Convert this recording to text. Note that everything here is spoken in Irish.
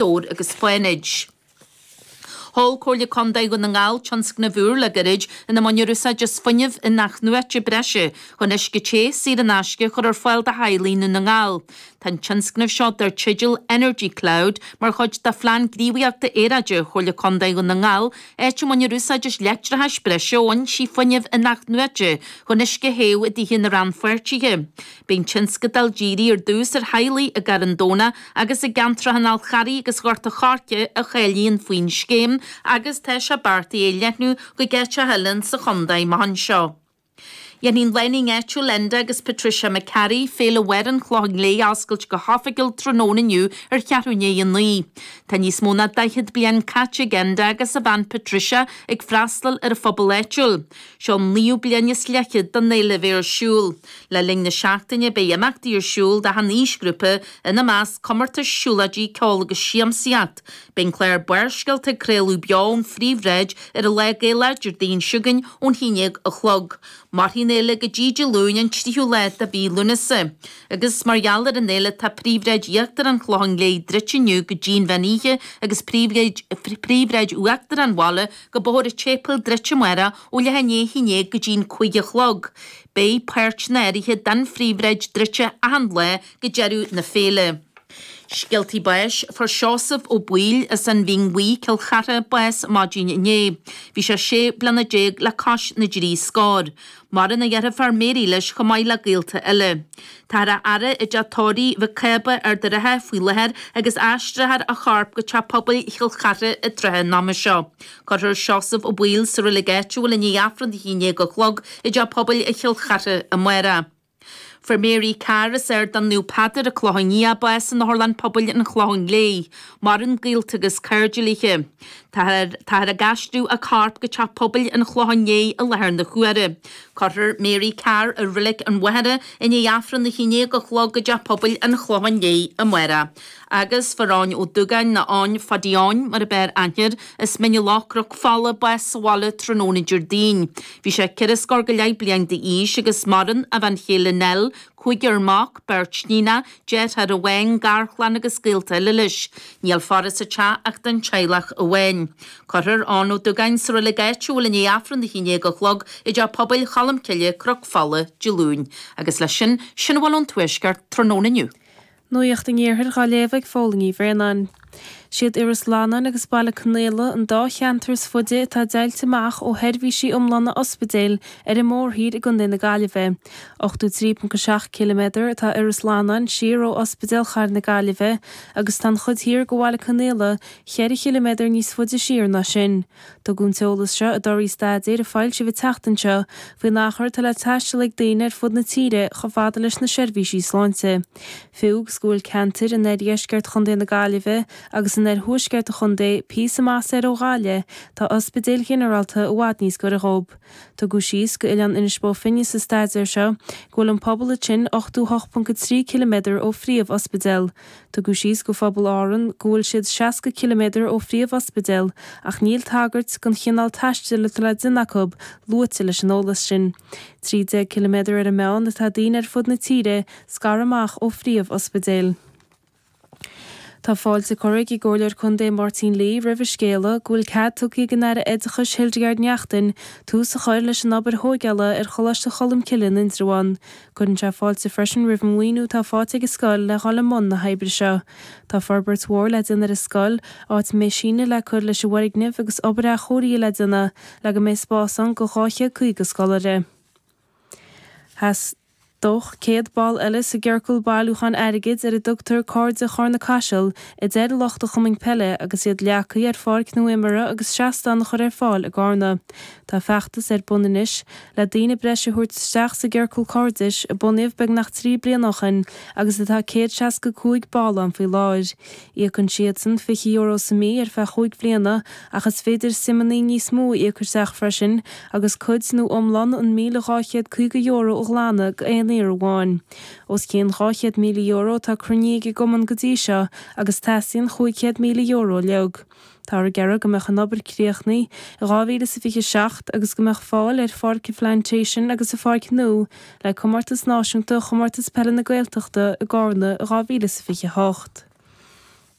Dobhair agus Fánaid. Sheol Comhairle Contae Dhún na nGall tionscnamh úr le gairid ina mbaintear úsáid as fuinneamh in-athnuaite breise chun uisce te, saor in aisce a chur ar fáil do theaghlaigh i nDún na nGall. Tá an tionscnamh seo dar teideal Energy Cloud mar chuid de Phlean Gníomhaíochta Aeráide Chomhairle Contae Dhún na nGall, áit a mbaintear úsáid as leictreachas breise ó fhoinsí fuinnimh in-athnuaite chun uisce a théamh i dtithe na rannpháirtithe. Beidh an tionscadal dírithe ar dtús ar theaghlaigh i gCarn Domhnach agus i gceantracha an Fháil Charraigh agus Ghort a' Choirce a cháilíonn faoin scéim agus tá sé beartaithe é a leathnú chuig áiteacha eile insa chontae amach anseo. Dhéanfaidh lánúin áitiúil Enda agus Patricia McCarry Féile Mháire an Chlocháin Léith a oscailt go hoifigiúil tráthnóna inniu ar cheathrú i ndiaidh a 9. Tá níos mó ná 40 bliain caite ag Enda agus a bhean Patricia ag freastal ar an phobal áitiúil. Seo an naoú bliain is leithchéad den fhéile a bheidh ar siúl. Le linn na seachtaine beidh imeachtaí ar siúl d'achan aoisghrúpa, ina measc, comórtais, siúlóidí, ceol agus siamsaíocht. Beidh an clár Barrscéalta ag craoladh beo ón phríomhshráid ar an lá Gaelach Déardaoin seo chugainn ón haon déag a chlog. Mairfidh an fhéile go dtí Dé Luain an tríú lá de mhí Lúnasa. Agus mar gheall ar an fhéile tá príomhshráid íochtar an Chlocháin Léith druidte inniu go dtí an mheán oíche agus príomhshráid uachtar an bhaile go bóthar an tSéipeil druidte amárach ó leath i ndiaidh a naoi go dtí'n cúig a chlog. Beidh páirteanna áirithe den phríomhshráid druidte achan lá go deireadh na féile. Scéaltaí báis, Fuair Seosamh Ó Baoill as an Mhín Bhuí, Cill Chartha, bás maidin inné. Bhí sé sé bliana déag le cois na dtrí scór. Maireann a dheirfiúr Mary leis chomh maith le gaolta eile. Táthar á fhaire i dteach tórraimh Mhic Cába ar Ard an Rátha faoi láthair agus aistreofar a chorp go Teach Pobail Chill Chartha i dtrátha an ama seo. Cuirfear Seosamh Ó Baoill sa reilig áitiúil i ndiaidh Aifreann a haon déag a chlog i dTeach Pobail Chill Chartha amárach. Fuair Mary Carr as Ardán Naomh Peadar, An Clochán Liath bás in Otharlann Pobail an Chlocháin Léith. Maireann gaolta agus cairde léithe. Táthar táthar ag aistriú a corp go Teach Pobail an Chlocháin Léith i láthair na huaire. Cuirfear Mary Carr i Reilig an Mhachaire i ndiaidh Aifreann a haon-déag a chlog i dTeach Pobail an Chlocháin Léith amárach. agus fuair Eoin Ó Dúgáin, nó Eoin Phaidí Eoin mar ab fhearr aithne air, as Mín na Loch, Cnoc Fola bás sa bhaile tráthnóna Déardaoin. Bhí sé ceithre scór go leith bliain d'aois agus maireann a bhean chéile Nell, cúigear mac, beirt níonacha, deartháir amháin, garchlann agus gaolta eile leis. Níl faire sa teach ach don teaghlach amháin. Cuirfear Eoin Ó Dúgáin sa reilig áitiúil i ndiaidh Aifreann a haon déag a chlog i dTeach Pobail Cholmcille, Cnoc Fola, Dé Luain. Agus leis sin, sin a bhfuil ón Tuaisceart tráthnóna inniu. Nuacht an Iarthair dhá léamh ag Fódhla Ní Bhraonáin. Siad Iorras Fhlannáin agus Baile Conaola an dá cheantar is faide atá deighilte amach ó sheirbhísí iomlána ospidéil ar an mórthír i gContae na Gaillimhe. 83.7 km atá Iorras Fhlannáin siar ó Ospidéal Chathair na Gaillimhe agus tá an chuid thiar de Bhaile Conaola cheithre chiliméadar níos faide siar ná sin. Tugadh an t-eolas seo i dtorthaí staidéir a foilsíodh an tseachtain seo faoin achar atá le taisteal ag daoine ar fud na tíre chomh fada leis na seirbhísí sláinte. Fiú agus go bhfuil ceantair in oirdheisceart chontae na Gaillimhe agus in oirthuaisceart an chontae píosa maith soir ó bhaile, tá ospidéil ghinearálta i bhfad níos gaire dhóib. Tugadh síos do Oileán Inis Bó Finne sa staidéar seo go bhfuil an pobal ansin 88.3 ciliméadar ó phríomh-ospidéal. Tugadh síos do phobal Árann go bhfuil siad 60 ciliméadar ó phríomh-ospidéal ach níl tagairt don chineál taistil atá le déanamh acu luaite leis an eolas sin. 13 ciliméadar ar an meán atá daoine ar fud na tíre scartha amach ó phríomh-ospidéil. Tá fáilte curtha ag an gComhairleoir Contae Máirtín Lee roimh an scéala go bhfuil cead tugtha ag an Aire Oideachais Hildegarde Naughton tús a chur leis an obair thóigeála ar Choláiste Cholmcille in Indreabhán. Cuireann sé fáilte freisin roimh an maoiniú atá faighte ag an scoil le dhul i mbun na hoibre seo. Tá forbairt mhór le déanamh ar an scoil, áit a mbeidh síneadh le cur leis an bhfoirgneamh agus obair athchóirithe le déanamh le go mbeidh spás ann do 250 scoláire. Theastódh 100 ball eile sa gciorcal bailiúcháin airgid ar a dtugtar Cairde Chárna Caiseal, a deir lucht an chumainn peile agus iad leagtha ar pháirc nua imeartha agus seastán a chur ar fáil i gCárna. Tá feachtas ar bun anois le daoine breise a thabhairt isteach sa gCiorcal Cairdis, a bunaíodh beagnach trí bliana ó shin agus atá céad seasca cúig ball ann faoi láthair. Íocann siadsan fiche euro sa mí ar feadh chúig bhliana ach is féidir suimeannaí níos mó a íoc isteach freisin agus cuid nó iomlán an míle dhá chéad caoga euro a ghlanadh do aon iarraidh amháin. Os cionn dhá chéad míle euro atá cruinnithe ag an gCumann go dtí seo agus teastaíonn chúig chéad míle euro uilig. Táthar ag iarraidh go mbeadh an obair críochnaithe i 2027 agus go mbeadh fáil ar Pháirc an Phlantation agus an pháirc nua le comórtas náisiúnta Chomórtas Peile na Gaeltachta i gCárna i 2028.